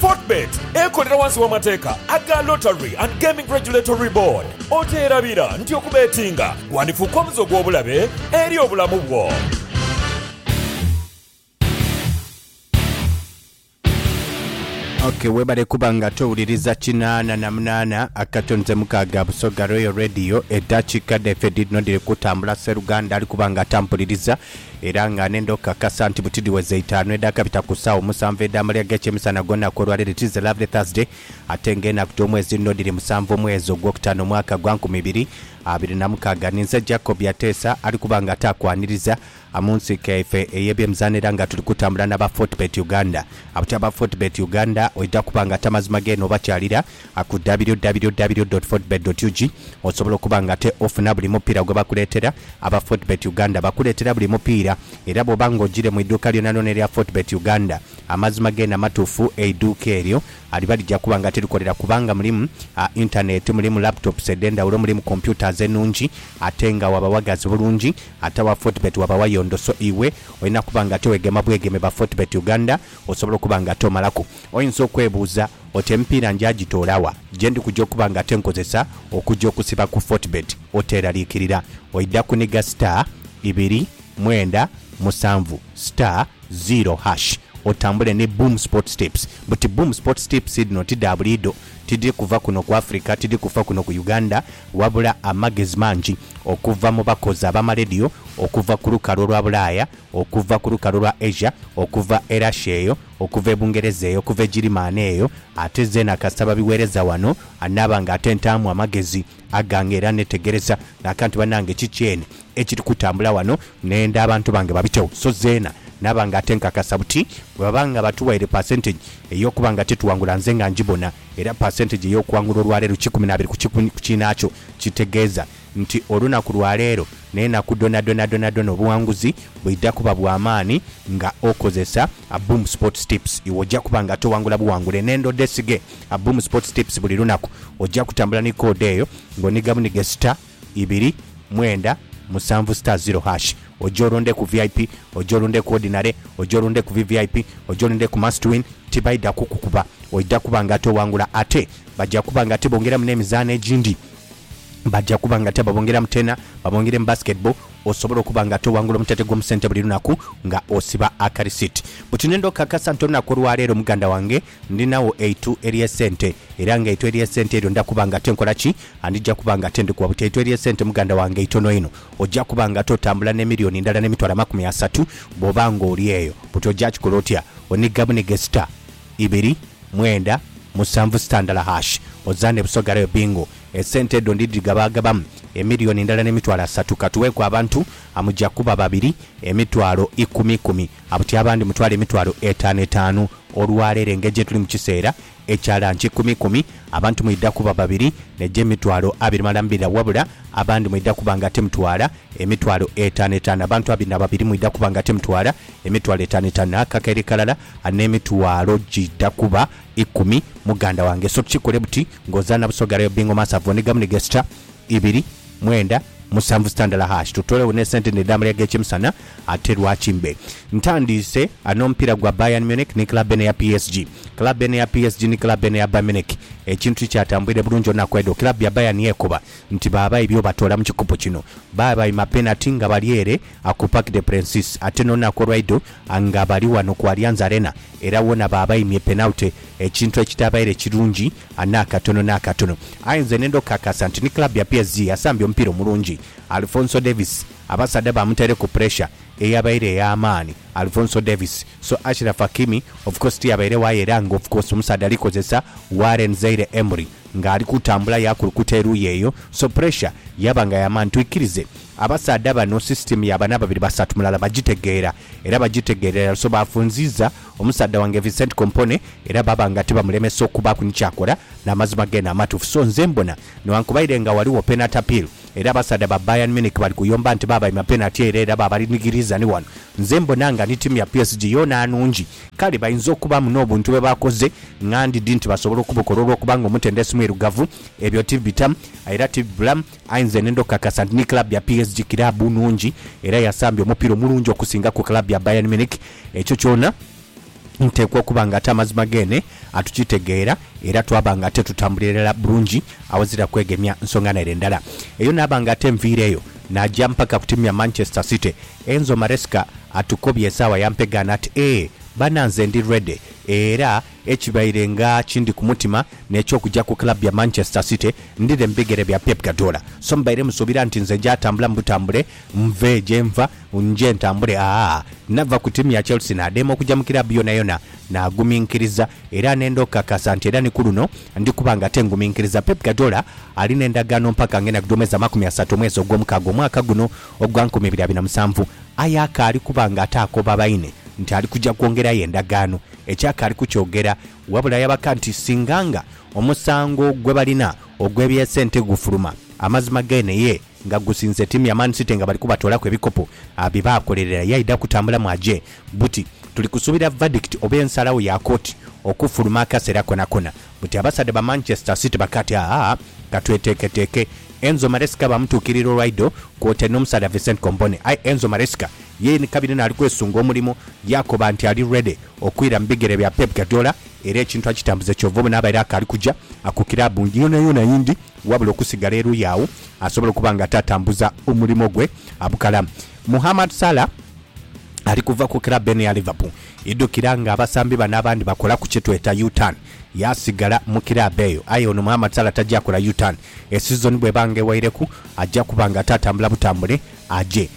Fortebet ekolera wansi w'amateeka aga Lottery and Gaming Regulatory Board. Okyerabira nti okubetinga gwandifuuka omuze ogw'obulabe eri obulamu bwo? Ok webale kuba nga towuliriza kinaana na munaana akato nze mukaaga Busoga Royal Radio edakika dhaife dhidhino dhiri kutambula seruganda ali kuba nga tampuliriza Era nga nenda okukakasa nti buti dhiweza itaanu edhakabita ku saawa omusanvu edh'amalya g'ekyemisana ghona ku olwaleero it is a lovely Thursday ate nga enaku dh'omwezi nno dhiri musanvu omwezi ogwokutaano omwaka gwa nkumi ibiri abiri na mukaaga ninze Jacob Yateesa ali kuba nga ate akwaniriza mu nsiike yaife ey'ebyemizaano era nga tuli kutambula n'aba Fortebet Uganda. Abatya ba Fortebet Uganda oidha kuba nga ate amazima geene obakyalira a ku www.fortebet.ug osobola okuba nga ate ofuna buli mupiira gwe bakuleetera. Aba Fortebet Uganda bakuleetera buli mupiira era bw'oba nga ogiire mu iduuka lyonalyona erya Fortebet Uganda, amazima geene amatuufu, eiduuka eryo liba lija kuba nga tirikolera kubanga mulimu a intaneeti, mulimu laptops edh'endhawulo, mulimu computers enungi ate nga waba wagazi bulungi. Ate aba Fortebet waba wayondo so iwe olina kuba nga ate wegema bwegeme ba Fortebet Uganda osobola okuba nga ate omalaku. Oyinza okwebuuza oti emipiira njaagitoola wa? Gye ndi kuja okuba nga ate nkozesa okuja okusiba ku Fortebet. Oteeraliikirira, oidha kuniga star, ibiri, mwenda, musanvu, star, ziro, hash, otambule ni Boom Sports Tips. Buti Boom Sports Tips dhino ti dha buliidho, tidhiri kuva kuno ku Africa, tidhiri kufa kuno ku Uganda, wabula amagezi mangi okuva mu bakozi ab'amaledio okuva ku lukalu olwa Bulaaya, okuva ku lukalu olwa Asia, okuva e Russia eyo, okuva e Bungereza eyo, okuva e Girimaani eyo, ate zeena kasita babiweereza wano, anaaba nga ate ntaamu amagezi agange era neetegereza n'akantu banange ki kyene ekiri kutambula wano nenda abantu bange babitewo. So zeena naaba nga ate nkakasa buti bwe baba nga batuwaire percentage ey'okuba nga tetuwangula nze nga ngibona era percentage ey'okuwangula olwaleero kikumi n'abiri ku kinaakyo kitegeeza nti olunaku lwa leero n'enaku dhonadhona dhonadhona obuwanguzi bwidha kuba bwa maani nga okozesa Aboom Sports Tips. Iwe oja kuba nga towangula buwangule n'endho dhesige Aboom Sports Tips buli lunaku. Oja kutambula ni koodi eyo nga oniga bunige star ibiri mwenda musanvu star zero hash. Oje olonde ku vip, oje olunde ku ordinary, oje olunde ku vvip, oje olunde ku must win, tibaidha kukukuba. Oidha kuba nga towangula ate baja kuba nga tibongeramu n'emizaano egindi. Baja kuba nga ate babongeramu tena, babongere mu basketball osobole okuba nga ate owangula omutete gw'omusente buli lunaku nga osiba akarisiti. Buti nenda okukakasa nti olunaku olwaleero muganda wange ndinagho eitu ery'esente era nga eitu ery'esente eryo nda kuba nga ate nkola ki? Ndija kuba nga ate ndikuwa. Buti eitu ery'esente muganda wange itono inho. Oja kuba nga ate otambula n'emiliyoni ndala n'emitwalo amakumi asatu bwoba nga oli eyo. Buti oja kikola otya? Oniga buniga esita ibiri, mwenda, musanvu sitandala hash oza ne Busoga Rail Bingo. Esente edho ndi dhigabaagabamu emiliyoni ndala ne mitwalo asatu. Ka tugheeku abantu amuja kuba babiri emitwalo ikumi ikumi, abuti abandi mutwale emitwalo etaanu etaanu. Olwa leero engeri gye tuli mu kiseera ekya lanki ikumi ikumi, abantu mwidha kuba babiri ne gye mitwalo abiri malala mbira wabula abandi mwidha kuba nga ate mutwala emitwalo etaanu etaanu. Abantu abiri na babiri mwidha kuba nga ate mutwala emitwalo etaanu etaanu. Akakeire kalala N'emitwalo giidha kuba ikumi, muganda wange. So kikole buti ng'ozaana Busoga Rail Bingo Mass Ave Onigamu ni Gesture ibiri mwenda musanvu sitandala hash. Tutolewo ne sente ne dha malya g'ekyemisana ate lwaki mbe ntandiise n'omupiira gwa Bayern Munich ni club eno eya PSG. Club eno eya PSG ni club eno eya Bayern Munich ekintu tikyatambwire bulungi olunaku edho. Club ya Bayern yekoba nti baaba ebyo batoola mu kikopo kino. Baabaima penati nga bali ere. A Ku Parc des Princes ate n'olunaku olwaidho nga bali ghano ku Allianz Arena era wona baabaimye penalty ekintu ekitaabaire kirungi n'akatono n'akatono. Aye nze ne ndhokakasa nti ni club ya PSG yasambye omupiira omulungi. Alphonso Davies abasaadha baamutaireku puresha eyabaire ey'amaani. Alphonso Davies so Achraf Hakimi of course tiyabairegho aye era nga of course omusaadha ali kozesa Warren Zaire Emery ng'ali kutambula yaakulukuta eruuyi eyo so puresha yaba nga ya maani. Twikirize. Abasaadha bano sisitiimu ya bana babiri basatu mulala bagitegeera era bagitegeerera so baafunziiza omusaadha wange Vincent Kompone era baaba nga tibamulemesa okubaaku ni ky'akola n'amazima geene amatuufu so nze mbona newankubaire nga ghaligho penati apiiru era abasaadha ba Bayern Munich bali kuyomba nti baabaima penati ere era baabalinigiriiza ni ghano nze mbona nga ni tiimu ya PSG yoona nnungi kale bainza okubaamu n'obuntu bwe baakoze ng'andidi nti basobola okubukola olw'okuba nga omutendesi mwirugavu ebyo tibitamu era tibibulamu. Aye nze nhenda okukakasa nti ni club ya PSG kiraabu nnhungi era yasambye omupiira omulungi okusinga ku club ya Bayern Munich. Ekyo kyona nteekwa okuba nga ate amazima geene atukitegeera era twaba nga ate tutambulira irala bulungi awazira kwegemya nsonga naire ndala. Eyo naaba nga ate nviireeyo naja mpaka ku tiimu ya Manchester City. Enzo Maresca atukobye esaawa yampegaana ati, Eeh, bana nze ndi ready era. Ekibaire nga kindi ku mutima n'eky'okugya ku club ya Manchester City ndhire mu bigere bya Pep Guardiola. So mbaire musuubira nti nze nja tambula mu butambule nve gye nva nje ntambule aah. Nava ku tiimu ya Chelsea nadheema okugya mu club yonayona naguminkiriza era nenda okukakasa nti era ni ku luno ndi kuba nga ate nguminkiriza. Pep Guardiola ali n'endagaano mpaka ng'enda kudhomeza makumi asatu omwezi ogw'omukaaga omwaka guno ogwa nkumi ibiri abiri na musanvu aye akaali kuba nga ate akoba baine nti ali kugya kwongerayo endagaano Eky'akaali kukyogera, wabula yabaka nti singa nga omusango gwe balina ogw'eby'esente gufuluma, amazima geene ye nga gusinze tiimu ya Man City nga bali kubatoolaku ebikopo bye baakolerera yaidha kutambulamu aje buti. Tuli kusuubira verdict oba ensalagho ya kooti okufuluma akaseera konakona buti abasaadha ba Manchester City bakaati aa katweteeketeeke. Enzo Maresca baamutuukirira olwaido kwotaire n'omusaadha Vicent Kompone aye Enzo Maresca Ye ni kabiri n'ali kwesunga omulimu, yaakoba nti ali ready okwira mu bigere bya Pep Guardiola era ekintu akitambuze kyova obona abaire akaali kuja ku kiraabu yoonayoona eyindi wabula okusigala eruuyi agho asobole okuba nga ataatambuza omulimu gwe abukala. Mohamed Salah ali kuva ku kiraabu eno eya Liverpool. Idhukira ng'abasambi bano abandi bakolaku kye tweta U-turn yaasigala mu kiraabu eyo aye ono Mohamed Salah taja kola U-turn. Esizoni bw'eba nga ewaireku aja kuba nga ataatambula butambule aje.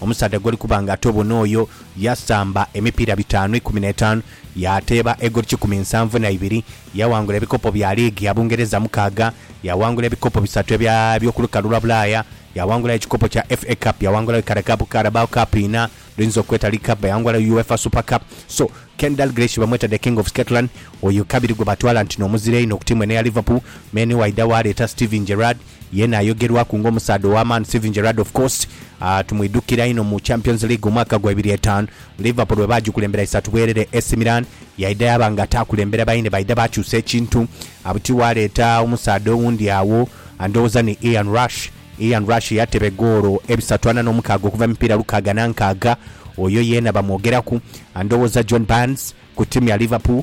Omusaadha gw'oli kuba nga ate obona oyo yasamba emipiira bitaanu ikumi n'etaanu, yaateeba egoli kikumi nsanvu na ibiri, yaawangula ebikopo bya liigi ya Bungereza mukaaga, yaawangula ebikopo bisatu ebya by'oku lukalu lwa Bulaaya, yaawangula ekikopo kya FA Cup, yaawangula Wikara Cup, Carabao Cup inha, dh'oyinza okweta League Cup, yaawangula UEFA Super Cup. So, Ken Dalglish bamweta The King of Scotland, oyo kabiri gwe batwala nti n'omuzira einho ku tiimu eno eya Liverpool, me ni waidha waaleeta Steven Gerrard, Yena ayogerwaku nga omusaadha ow'amaani Steven Gerrard of course tumwidhukira inho mu Champions League omwaka gwa ibiri etaanu Liverpool bwe baagikulembera isatu bwerere Ac Milan yaidha yaaba nga ataakulembera baine baidha baakyusa ekintu buti waaleeta omusaadha owundi agho ndhowooza ni Ian Rush Ian Rush yateba egoolo ebisatu ana n'omukaaga okuva mu mipiira lukaaga na nkaaga oyo yeena bamwogeraku ndhowooza John Barnes ku tiimu ya Liverpool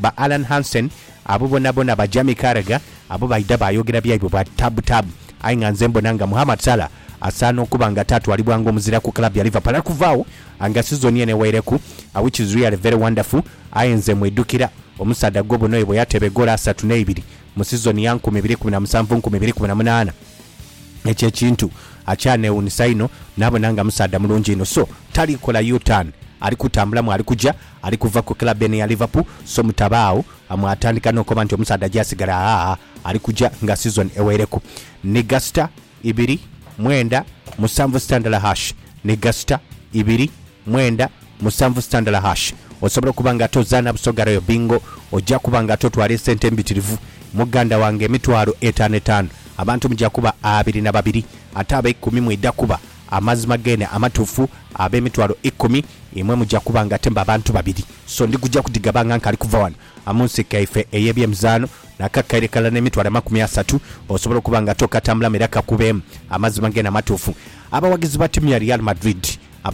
ba Allan Hansen abo bonabona ba Jamie Carragher abo baidha baayogera byaibwe bwa taabu taabu aye nga nze mbona nga Mohamed Salah asaana okuba nga ataatwalibwa ng'omuzira ku club ya Liverpool okuva agho nga sizoni eno eweireku which is really very wonderful aye nze mwidhukira omusaadha Gobon oyo bweyateba egoolo asatu n'eibiri mu sizoni ya nkumi ibiri ikumi na musanvu nkumi ibiri ikumi na munaana ekyo ekintu akyanewuunisa inho nabona nga musaadha mulungi inho so tali kola U-turn ali kutambulamu ali kuja Ali kuva ku club eno eya Liverpool so mutabaagho mwatandika n'okoba nti omusaadha gyasigala aah ali kuja nga season eweireku ni gasita ibiri mwenda musanvu sita ndala hash ni gasita ibiri mwenda musanvu sita ndala hash Osobola okuba nga ate ozaana Busoga Royal Bingo oja kuba nga ate otwala esente embitirivu muganda wange emitwalo etaano etaano abantu muja kuba abiri na babiri ate abeikumi mwidha kuba Amazima geene amatuufu, ab'emitwalo ikumi, imwe muja kuba nga temba bantu babiri. So ndi kuja kudhigaba nga nkali kuva ghano, mu nsi yaife ey'ebyemizaano, n'akakaire kalala n'emitwalo amakumi asatu, osobole okuba nga tokatambulamu era kakubeemu. Amazima geene amatuufu, abawagizi ba tiimu ya Real Madrid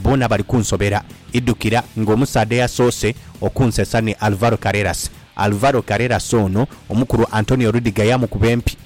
boona bali kunsobera. Idhukira nga omusaadha eyasoose okunsesa ni Alvaro Carreras. Alvaro Carreras ono, omukulu Antonio Rudiger yaamukuba empi